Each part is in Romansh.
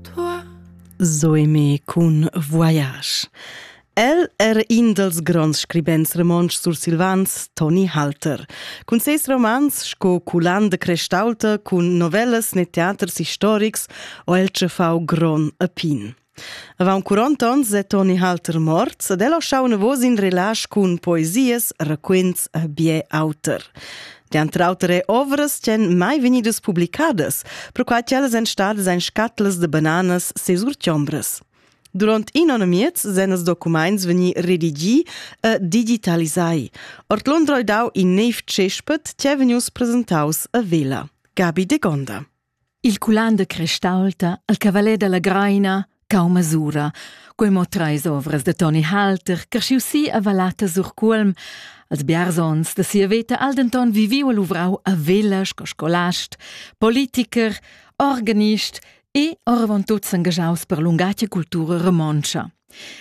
Tua zoeme cun voyage. El er in dels gronds scribents romontsch sursilvans, Toni Halter. Cun ses romans sco Culan de Crestalta, cun novellas ne teaters historics, o el tschefau gron a pin. Avant 40 onns è Toni Halter morts ed el ha schau navos in relasch cun poesias, raquints e bien auter. Dentr auter è ovras ch'en mai vegnidas publicadas, perquai ch'ellas èn stadas en scatlas de bananas ses urtiombras. Durant in onn miez sen els documents vegnir redigì e digitalisai. Ord Londra dau in neiv cespet che vegnius presentaus a Vela. Gabi de Gonda. Il culan da Crestaulta, il cavalet dalla Greina, cau masura. Quei mo treis ovras da Toni Halter, creschiu si a Vallata sur Cuolm. Als biarzons da sia veta ha el denton viviu e luvrau a Vella sco scolast, politicher, organist e oravontut s'engagiaus per lungatgia cultura romontscha.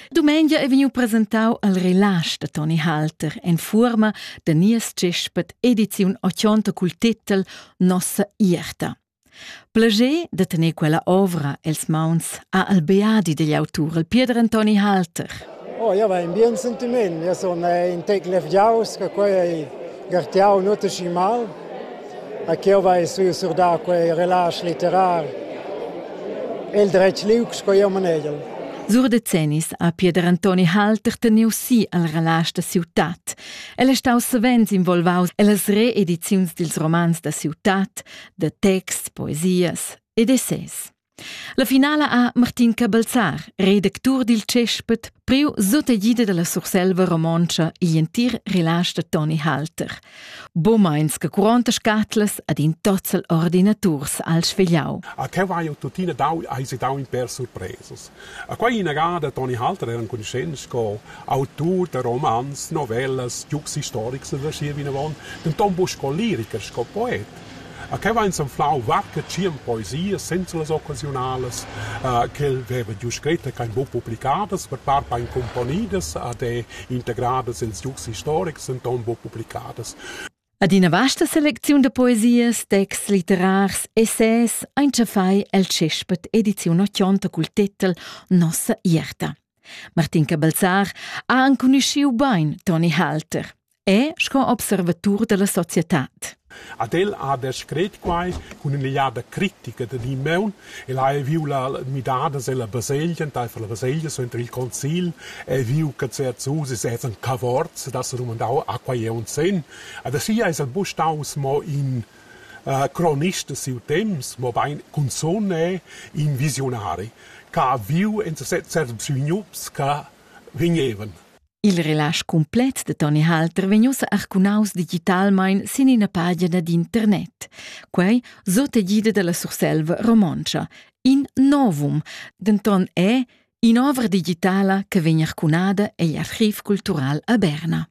Dumengia è vegniu presentau al relasch da Toni Halter en fuorma da nies tschespet ediziun 80 cul titel Nossa ierta. Plager da tener quella ovra els mauns a Albeadi degli autur, il Pieder Antoni Halter. Oh, ja va in bien sentiment. Ja sono in tec levgiaus, che quei ei gartiau nuote schi mal. A chi ho vai sü surdà quei relasch litterar? El dretg liug sco jeu manegel. Sur decennis ha Pieder Antoni Halter teniu si al relasch da ciutat. El è stau savens involvaus ellas reediziuns dils romans da ciutat, da texts, poesias ed essais. La finala ha Martin Cabelzar, redactur dil Cespet, priu sutegida dalla Surselva romontscha igl entir relage da Toni Halter. Bomeins che curonta scatlas ad in tozzel ordinaturs al svegliau. A te vai tuttina dau, hai si dau in per surpresas. A quei inagada Toni Halter era conoscent co autur da romans, novellas, giugs historics da schier vinavon, denton bu sco liricher, sco poet. A que vain s'anflau varche tschient poesias senza las occasiunalas uh, ch'el veva giù scrit e ch'hain buc publicadas, per part hain cumponidas ed è integradas ils ducs historics, denton buc publicadas. Ad ina vasta selecziun da poesias, texts litterars, essais ein tschafai el tschespet ediziun ochionta cul titel Nossa ierta. Martin Cabalzar ha anconuschiu bein Toni Halter. è sco observatur dalla societad. Ad el ha descret quai cun in'egliada critica da Dimeun. El ha viu la midada della baselgia, enteifer la baselgia suenter il concil, e viu che Zerzusi sesan cavorts, da se domandau a quai è un sen. Ad sia es el bu staus mo in uh, cronist de siu temps, mo bein consone in visionari, che ha viu en certs sognups che vegnevan. Il relasch cumplet de Toni Halter vegn ussa arcunaus digitalmein sin ina pagina dad internet. Quei sot egida dalla Surselva romontscha. In novum, denton è in'ovra digitala che vegn arcunada egl archiv cultural a Berna.